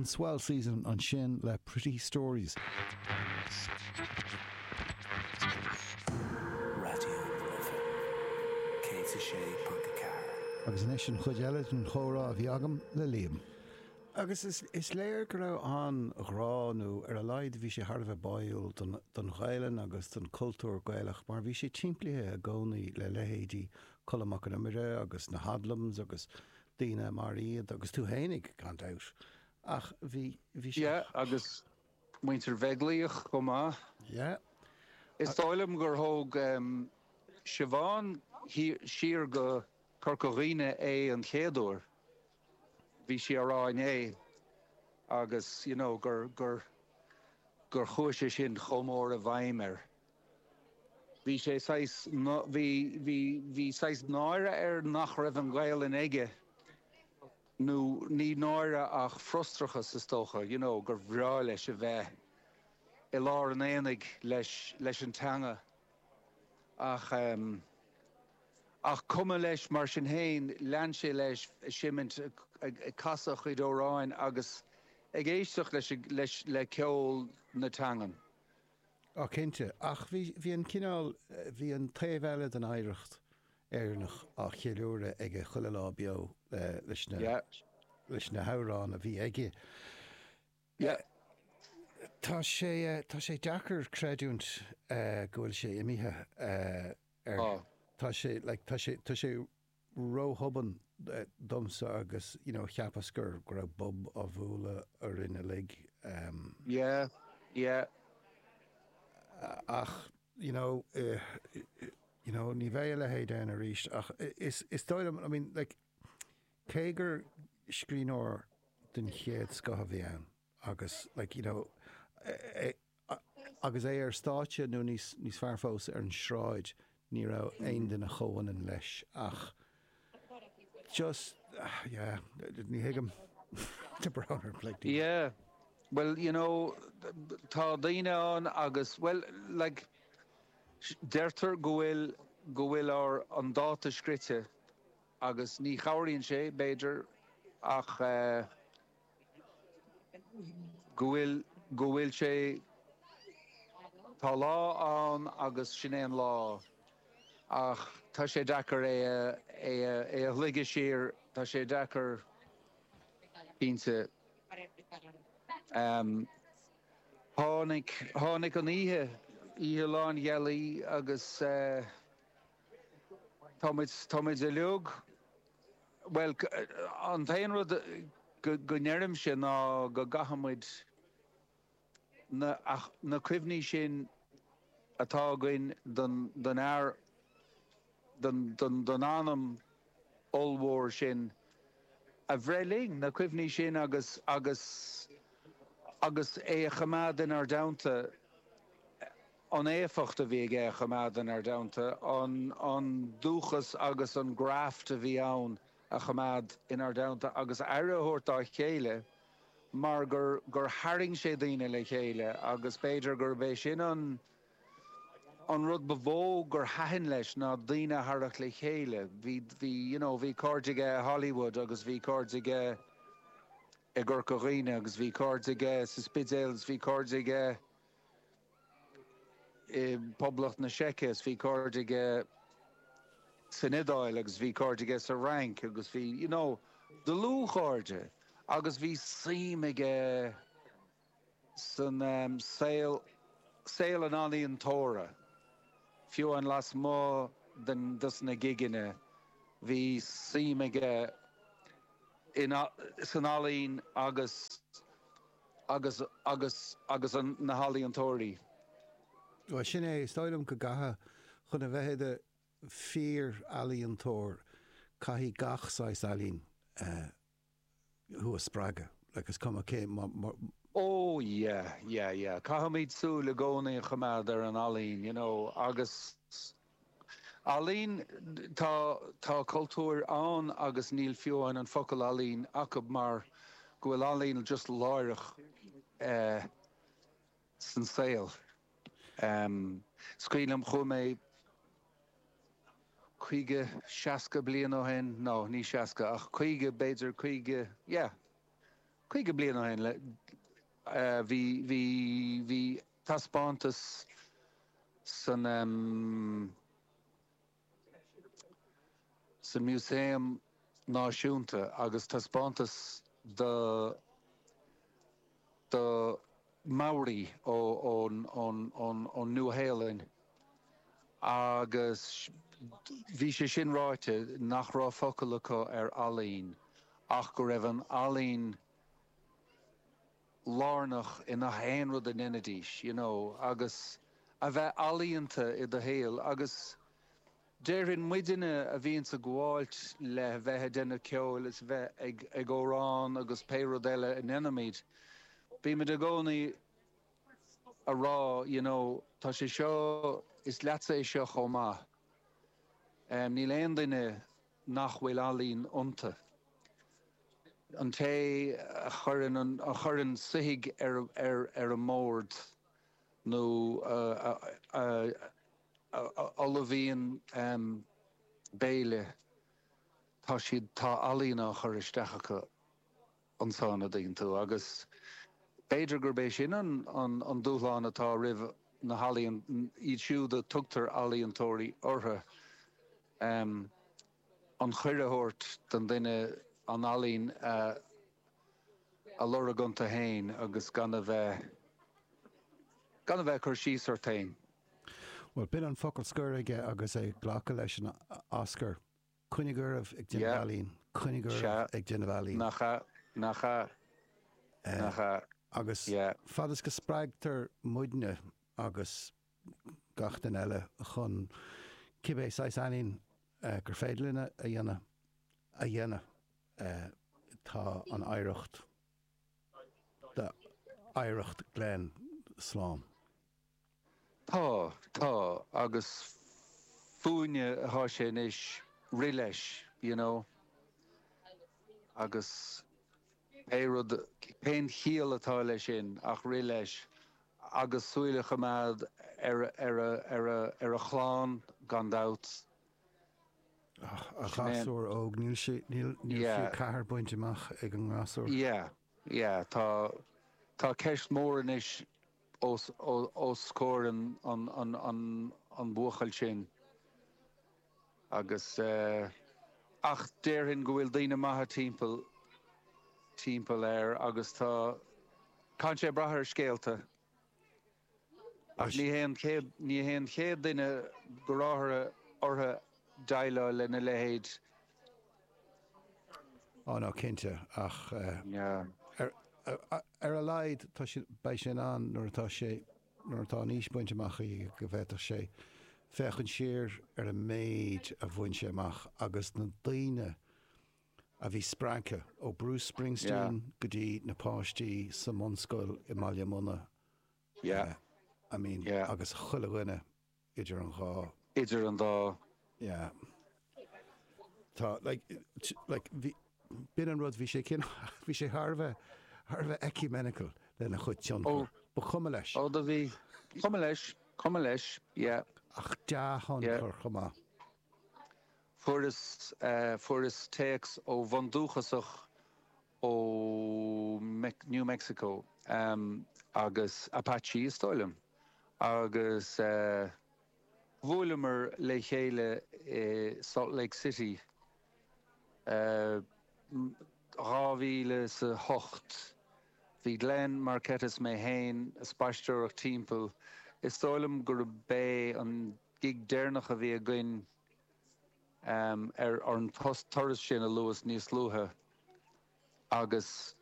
The Swell Season ansin le pretty stories. Raidió na Life 106.4. Agus anois an chuid eile den chomhrá a bhí agam le Liam. Agus is léir go raibh an-ghrá, nó ar a laghad bhí sé thar a bheith báúil don Ghaelainn agus don chultúr Gaelach mar bhí sé timplithe i gcónaí le leithéidí Colm Mac an Iomaire agus na hOdlums agus daoine mar iad, agus tú fhéinig, gan dabht, ach bhí, bhí sé. Yeah, agus muintir Bheaglaoich chomh maith. Yeah. Is dóigh liom gur thóg Siobhán siar go Corca Dhuibhne é an chéad uair, bhí sí á rá inné, agus, you know, gur, gur, gur chuaigh sé sin chomh mór i bhfeidhm air. Bhí sé saghas, bhí, bhí, bhí saghas náire air nach raibh an Ghaelainn aige, nó ní náire ach frustrachas is dócha, you know, gur bhreá leis a bheith i lár an aonaigh leis, leis an teanga. Ach ehm, ach cuma leis, mar sin féin, lean sé leis a seimint, ag, ag casadh a chuid amhráin agus ag éisteacht leis, leis, le ceol na teangan. Á cinnte. Ach bhí, bhí an cineál, bhí an taobh eile den oidhreacht Éireannach á cheiliúradh aige chuile lá beo leis na, leis na hamhráin a bhí aige. Tá sé, tá sé deacair creidiúint go bhfuil sé imithe ar, tá sé, like, tá sé, tá sé, róthobann domsa agus you know cheap mé go raibh bob á bhualadh orainn uilig em. yeah yeah. ach you know you know ní bheidh a leithéid ann arís ach is is dóigh liom I mean like cé gur scríbhneoir den chéad scoth a bhí ann, Agus, like, you know, é, agus é ar stáitse nó níos, níos fearr fós, ar an sráid, ní raibh aon duine comhionann leis ach just, yeah, ní thuigim the Browner like the. Yeah, well, you know, tá daoine ann agus, well, like, deirtear go bhfuil, go bhfuil ár, an dáta scrite agus ní chabhraíonn sé, b'fhéidir ach. go bhfuil, go bhfuil sé, tá lá ann agus sin é an lá ach tá sé deacair é a, é a, é a shloigeadh siar, tá sé deacair, cinnte. Ehm, tháinig, tháinig an oíche, oíche lánghealaí agus eh, tá muid, tá muid uilig. Bhuel, an t-aon rud go ndeirimse ná go gcaithfidh muid na cuimhní sin atá againn den fhear, den anam ollmhór sin, a bhreith linn, na cuimhní sin agus agus é a choimeád inár dteannta. an éifeacht a bhí aige a choimeád in ár dteannta, an dúchas agus an graft a bhí ann a choimeád in ár dteannta agus aire a thabhairt dá chéile mar gur tharraing sé daoine le chéile agus b'fhéidir gurb é sin an an rud ba mhó gur thaitin leis ná daoine a tharrac le chéile. Bhí bhí you know bhí cairde aige i Hollywood agus bhí cairde aige i gCorca Dhuibhne agus bhí cairde aige sa Spidéal agus bhí cairde aige i bPoblacht na Seice is bhí cairde aige san Iodáil agus bhí cairde aige sa Fhrainc agus bhí, you know, dlúthchairde agus bhí suim aige san ehm, saol, saol an ealaíontóra, fiú amháin lasmuigh den, dos na gigeanna, bhí suim aige in, san ealaín agus. Agus, agus, agus an, na healaíontóirí? Bhuel, sin é. Is dóigh liom go gcaithfidh, chun a bheith i do fíor-ealaíontóir, caithfidh gach saghas ealaín thú a spreagadh, like, is cuma cé, mar, mar, Ó, yeah, yeah, yeah. Caithfimid súil i gcónaí a choimeád ar an ealaín, you know, agus, Ealaín, tá, tá cultúir ann agus níl fiú amháin an focal ealaín acu mar go bhfuil ealaín just láithreach san saol. Is cuimhin liom, chuaigh mé caoga, seasca bliain ó shin, no, ní seasca ach caoga, b'fhéidir caoga, yeah, caoga bliain ó shin le, bhí, bhí, bhí, taispeántas san san Músaem Náisiúnta agus taispeántas do do Maori ón Nua-Shéalainn agus bhí sé sin ráite nach raibh focal acu ar ealaín ach go raibh an ealaín lárnach i ngach aon rud a ndeinidís, you know, agus a bheith ealaíonta i do shaol agus déarfainn, muidinne a bhíonns ag gabháilt le bheith a' déanamh ceoil is bheith ag amhrán agus pé rud eile a ndeinimid, bímid i gcónaí ag rá, you know, tá sé seo, is leatsa é seo chomh maith, em, níl aon duine. nach bhfuil ealaín iontu. An té a chuireann soithigh ar an mbord nó a ullmhaíonn béile, tá siad, tá ealaín á chur isteach acu. ansin iontu, agus b'fhéidir gurb é sin an dúshlán atá roimh na healaíontóirí, iad siúd a dtugtar ealaíontóirí orthu, an chaoi a thabhairt don duine, an ealaín a lorg iontu féin agus gan a bheith ag cur síos ort féin. Bhuel, b'in an focal scoir aige agus é ag glacadh leis an Oscar. Coinnígí oraibh ag déanamh ealaín. Coinnígí oraibh ag déanamh ealaín. Sea. Nach ea. Nach ea. Nach ea. Agus fad is go spreagtar muidne agus gach duine eile chun cibé saghas ealaín gur féidir linn a dhéanamh a dhéanamh, tá an oidhreacht d'oidhreacht Glen slán. Tá, tá, agus fúinne atá sé anois rith leis, you know, agus pé rud, cén chiall atá leis sin ach rith leis agus súil a choimeád ar a, ar a chlann, gan dabht. Ach, an gasúr óg, níl sé, níl, níl fiú a ceathair bainte amach ag an ngasúr. Yeah. Yeah, tá, tá ceist mhór anois os, os comhair an, an, an, an, an bhuachaill sin agus eh, ach déarfainn go bhfuil daoine maithe timpeall, timpeall air agus tá, tá sé ag brath ar scéalta. Ach ní hé an chéad duine go raibh orthu déileáil lena leithéid. Á ná cinnte, ach ar a laghad beidh sé in ann, nuair atá an aois bainte amach aige go bhféadfadh sé, féachaint siar ar an méid a bhain sé amach agus na daoine a bhí spreagtha, ó Bruce Springsteen go dtí na páistí sa mbunscoil i mBaile Munna. Yeah, I mean, yeah. agus chuile dhuine idir an dhá. idir an dá. Yeah. Tá, like, like, bhí, b'in an rud, bhí sé cin, bhí sé thar a bheith, thar a bheith ecumenical lena chuid tionchar. Ó. Ba chuma leis. Ó, do bhí, chuma leis, chuma leis, yeah. Ach dea-thionchar chomh maith. Fuaireas, fuaireas téacs ó bhundúchasach ó New Mexico, agus Apache is dóigh liom, agus bhuaileamar le chéile i Salt Lake City i 2008. Bhí Glenn, Marketta is mé féin ag spaisteoireacht timpeall, is dóigh liom gurb é an gig deireanach a bhí againn, ar an turas sin a luas níos luaithe agus